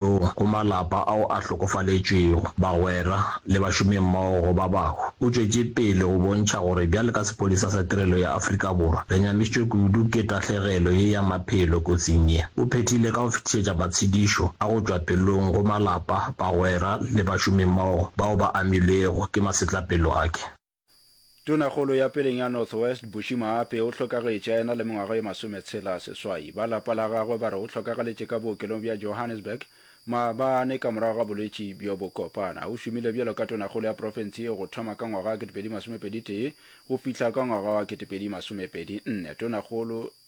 Jehowa go malapa ao a hlokofaletšwego, bagwera le bašomimmogo ba bangwe. O tšwetše pele go bontšha gore bjale ka Sepolesa sa Tirelo ya Afrika Borwa, re nyamišitšwe kudu ke tahlegelo ye ya maphelo kotsing ye. O phethile ka go fetišetša matshedišo a go tšwa pelong go malapa, bagwera le bašomimmogo bao ba amilwego ke masetlapelo ake. Tonakgolo ya peleng ya North West, Bushy Maape, o hlokagetše a ena le mengwaga e masometshela seswai. Ba lapa la gagwe ba re o hlokagaletše ka bookelong bja Johannesburg maabane ka morago ga bolwetši bjo bo kopana. O šomile bjalo ka tonakgolo ya profense yeo go thoma ka ngwaga wa 2021 go fihla ka ngwaga wa 2024. Tonakgolo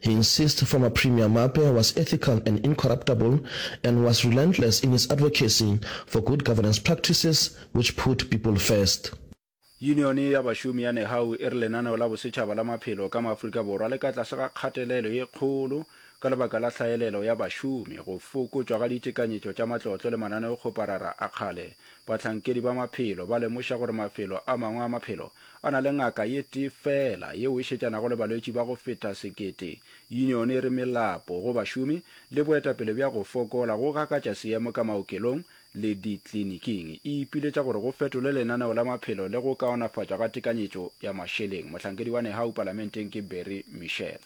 He insist former Premier Mape was ethical and incorruptable and was relentless in his advocacy for good governance practices which put people first. Yunione ya bašomi ya Nehawu e re lenaneo la bosetšhaba la maphelo ka mo Afrika Borwa le ka tlase ga kgatelelo ye kgolo ka lebaka la hlaelelo ya bašomi, go fokotšwa ga ditekanyetšo tša matlotlo le mananeokgoparara a kgale. Bahlankedi ba maphelo ba lemoša gore mafelo a mangwe a maphelo A na le ngaka ye tee feela yeo e šetšanago le balwetši ba go feta sekete. Union e re melapo go bašomi le boetapele bja go fokola go gakatša seemo ka maokelong le ditliniking. E ipiletša gore go fetolwe lenaneo la maphelo le go kaonafatšwa ga tekanyetšo ya mašeleng. Mohlankedi wa Nehawu palamenteng ke Barry Michel.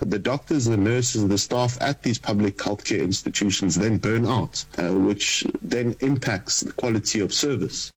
The doctors, the nurses, the staff at these public healthcare institutions then burn out, which then impacts the quality of service.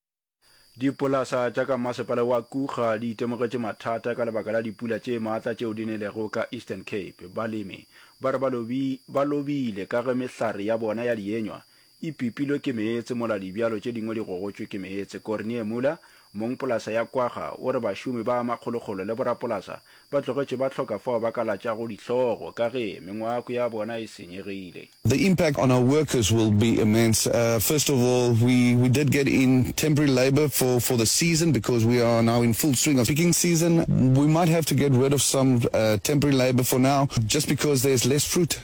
Dipolasa tša ka masepala wa Kruger di itemogetše mathata ka lebaka la dipula tše maatla tšeo di nelego ka Eastern Cape. Balemi ba re ba lobile ka ge mehlare ya bona ya dienywa E pipilwe ke meetse mola dibjalo tše dingwe di gogotšwe ke meetse. Cornie Muller, mong polasa ya Kwagga, o re bašomi ba makgolokgolo le borapolasa ba tlogetše ba hloka fao ba ka latšago dihlogo ka ge mengwako ya bona e senyegile. The impact on our workers will be immense. First of all, we we did get in temporary labour for for the season because we are now in full swing of picking season. We might have to get rid of some temporary labour for now just because there's less fruit.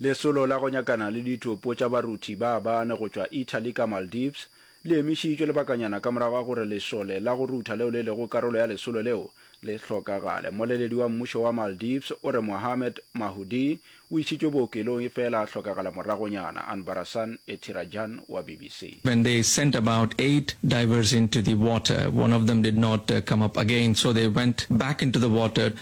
Lesolo la go nyakana le ditopo tša baruthi ba bane go tšwa Italy ka Maldives le emišitšwe lebakanyana ka morago ga gore lesole la go rutha leo le lego karolo ya lesolo leo le hlokagale. Mmoleledi wa mmušo wa Maldives o re Mohamed Mahoudi o išitšwe bookelong efela a hlokagala moragonyana. Anbarasan Ethirajan wa BBC. When they sent about eight divers into the water, one of them did not come up again, so they went back into the water.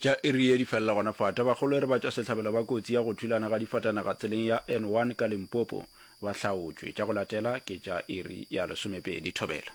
Tša Erie di felela gona fa. Tabakgolo e re batšwasehlabelo ba kotsi ya go thulana ga difatanaga tseleng ya N1 ka Limpopo ba hlaotšwe. Tša go latela ke tša iri ya lesomepedi thobela.